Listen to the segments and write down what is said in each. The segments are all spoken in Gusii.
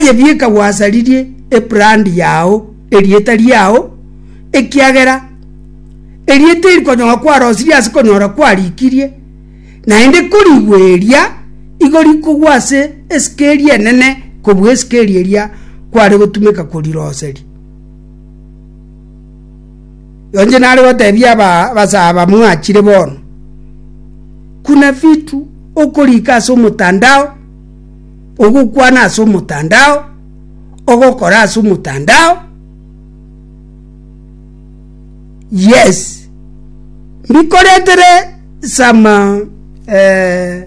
Gebieka gwasaririe ebrand yao, erieta riao, ekiagera erie teri konyong'a kwarosirie ase konyora kwarikirie, naende korigwe eria igo rikogwa ase esikeri enene kobua esikeri eria kware gotumeka koriroseri. Yonche nare gotebia abasaba mwachire bono, kuna vitu okorika ase omotandao, Ogokwana ase omotandao, ogokora ase omotandao, yes, mbikoretere some eh,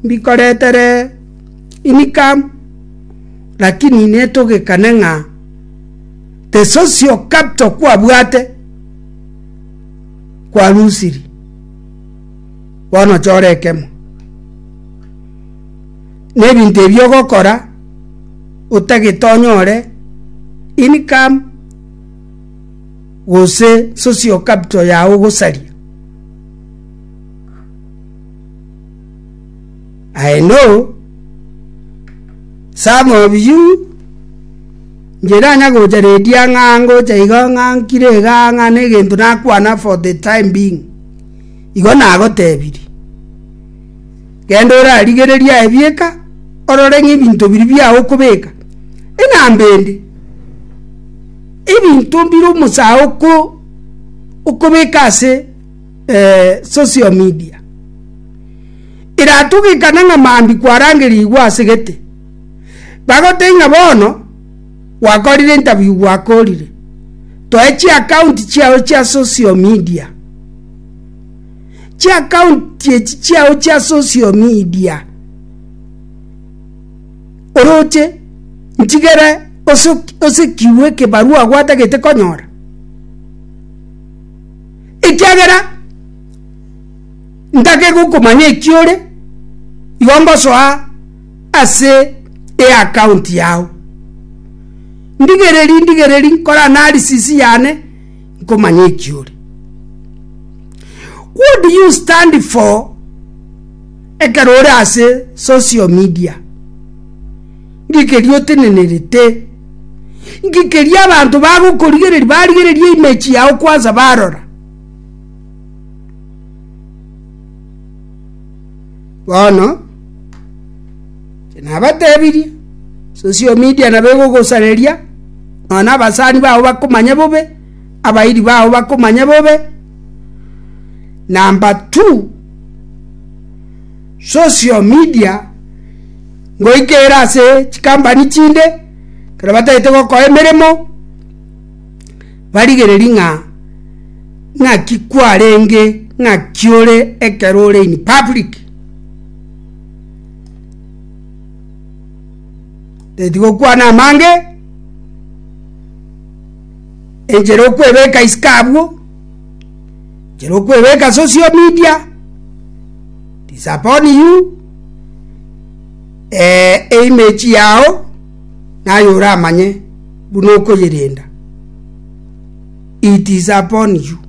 mbikoretere income, rakini netogekane ng'a the source of capital kwabwate, kwarusiri, bono chora ekemo. Nebinto ebi ogokora otagete onyore income gose social capital yao ogosaria. I know some of you nche nanya gocha redi ang'a ngocha iga ng'a nkire iga ng'a negento nakwana for the time being igo nagotebirie. Genda orarigererie aye bieka, orore ng'a ebinto biria biao okobeka enambendi, ebinto bire omosae okobeka ase social media. Eratogekane ng'a mambia kwarangerigwe ase gete, bagotebie ng'a bono gwakorire interview gwakorire, toe chiaccount chiao chia social media. chi'akaunti echi chiao chia social media, oroche nchigere osekigwe ekebarua gwatagete konyora, ekiagera ntake gokomanya eki ore, igo ngosoa ase eakaunti yao. Ndigereri ndigereri nkore analysis yane. nkomanya eki ore. What do you stand for ekero ore ase social media? Nki keria otenenerete? Nki keria abanto bagokorigereri barigereria image yao kwansa barora? Bono Nabatebirie, Social media nabo egogosareria, nonya abasani bao bakomanya bobe, abairi bao bakomanya bobe. Number two, social media ngoika ere ase chikampani chinde, ekero batagete gokoa emeremo, barigereria ng'a ng'aki kwarenge, ng'aki ore ekero ore in public. Etigokwana amange, enchera okwebeka isiko abwo, enchera okwebeka social media, is upon you, eimage yao naye oramanye buna okoyerenda, it is upon you.